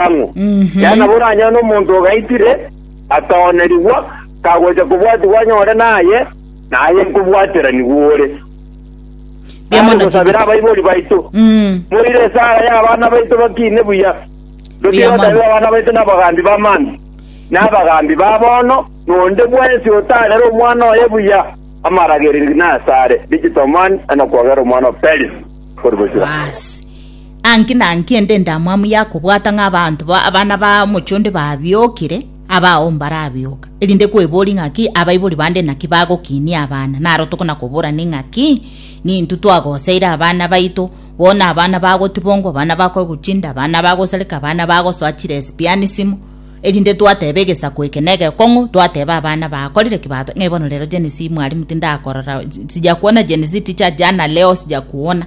ang'o? Yaani nabo oranyore nomonto ogaitire, atoonerigwa, kagocha kobwatigwa anyore naye, na aye nkobwateranigwa ore. Mbuya mono Gosabera Timotheo. abaibori baito. Mm. Moire esara y'abana baito bakiine buya. Mbuya mono. Totigotabera abana baito n'abagambi b'amambe, n'abagambi ba bono, n'onde bwensi otarera omwana oye buya, amaragererio nasare. Digital man, anakwagera omwana o Peris. Korwa Bosira. Basi. Anki nanki ende endamwamu ya kobwata ng'a abanto ba abana ba omochie onde babiokire, abao mbarabioka, erinde kweboria ng'aki abaibori bande naki bagokinia abana, naro tokona koborana ing'aki nintwe twagoseire abana baito, bono abana bagotibongwa, abana bakoeguchinda, abana bagosareka, abana bagosoa chiresipianisimo, erinde twateba egesaku eke na egekong'u, twateba abana bakorire ki bato, ng'ai bono rero Gen Z mwarimu tindakorora, sijakuona Gen Z teacher jana leo sijakuona.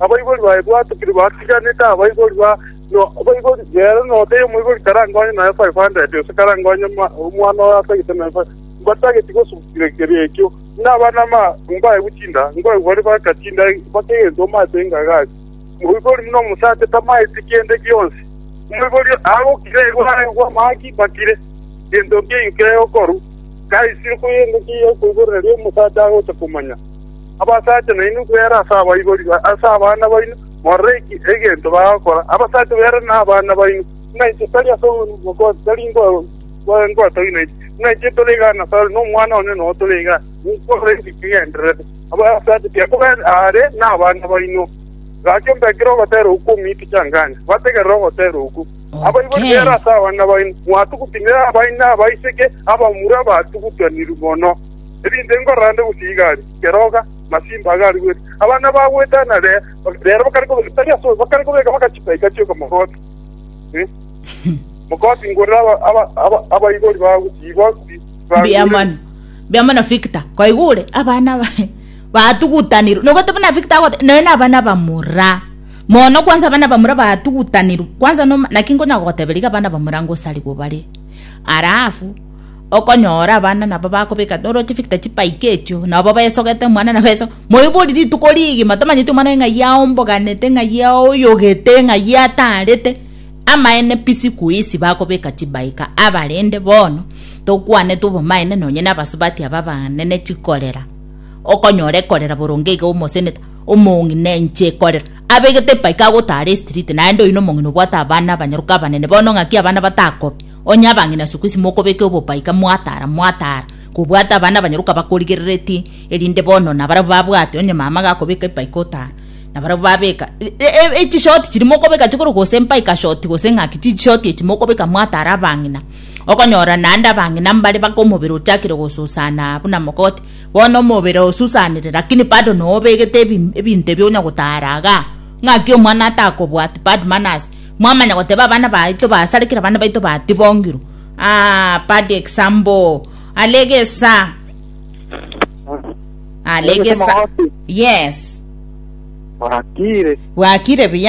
Abaibori baye bwatokire batiganete abaibori ba abaibori b'ere, na otaiyo omoibori karangonye nonya five hundred, gose karangonye omwana oye atagete nonya five hundred, mbatageti gosugusera ekerio ekio. Inee abana b'amagumba aye gotinda? Ngwaye baria bagatinda mpaka egento omanyete engaga ase omoibori buna omosacha tamanyeti kende gionsi. Omoibori agokira egware bw'amang'ana ki bakire, gento nki enkeye okorwa? Kaisire koyenda ekiya okoiborera ri'omosacha agocha komanya. Abasacha nainwe bwere ase abaibori ase abana baino, morore egento bagokora. Abasacha bwere nabana baino, buna inche tari ase obogosi tari ngotogia nainche, buna inche tore iga nasare, na Omwana one noyo tore iga, nigo ore ekigendererwa. Abasacha tiga kobeera aare nabana baino. Gaki ombe ekero ogoteera okwo omiite changanya, bategerere ogoteera okwo. Abaibori bwere ase abana baino, mwatugutinire abaina abaiseke abamura abatugutaniri mono. Ebinto inkororande gose igari, keroga, masimba aga arigwete, abana bagwetana rero, rero bakare kobeka, tari ase oyo, bakare kobeka mpaka chisaika chioka mogoti. Eh, mogoti ngorere aba- aba- aba- abaibori bao gose igoti bagure. Mbiamano. Mbiamano Victor. Koigure abana ba batugutanirwe. Nogwete buna Victor agote noyo na abana bamura. Mono kwanza abana bamura batugutanirwe. Kwanza no naki ngonya goteberia iga abana bamura ngosarigwe bare. Alafu Okonyora abana nabo bakobeka noroche victor chibike echio nabo besogete omwana nabo esoge moibori rituko rigima tomanyeti omwana oyo ng'ai aomboganete ng'ai aoyogete ng'ai atarete amaene pi siku hizi bakobeka chibaika abarende bono tokwanete obomaene nonye na abasubati aba abanene chikorera okonyora ekorera boronge iga omoseneta omong'ina enche ekorera abegete ebaika agotara estreet naende oyio nomong'ina obwate abana abanyaroka abanene bono ng'aki abana batakobia. Onye abang'ina ase okwesima okobeke obobaika mwatara mwatara kobwata abana abanyaroka bakorigerereti, erinde bono nabarabwo babwate onye mama gakobeka ebaika otara nabarabwo babeka echishoti chiria mokobeka chikorwa gose ebaika shoti gose ng'aki chishoti echi mokobeka mwatara abang'ina okonyora naende abang'ina mbare mpaka omobere ochakire gosusana buna mogoti bono omobere osusanire lakini bado nobegete ebinto ebio onya gotara igaa ng'aki omwana atakobwati bad manners. Mwamanya goteba abana baito basarekire abana baito batibongirwe ah bad example alegesa alegesa yes bwakire bwakire buya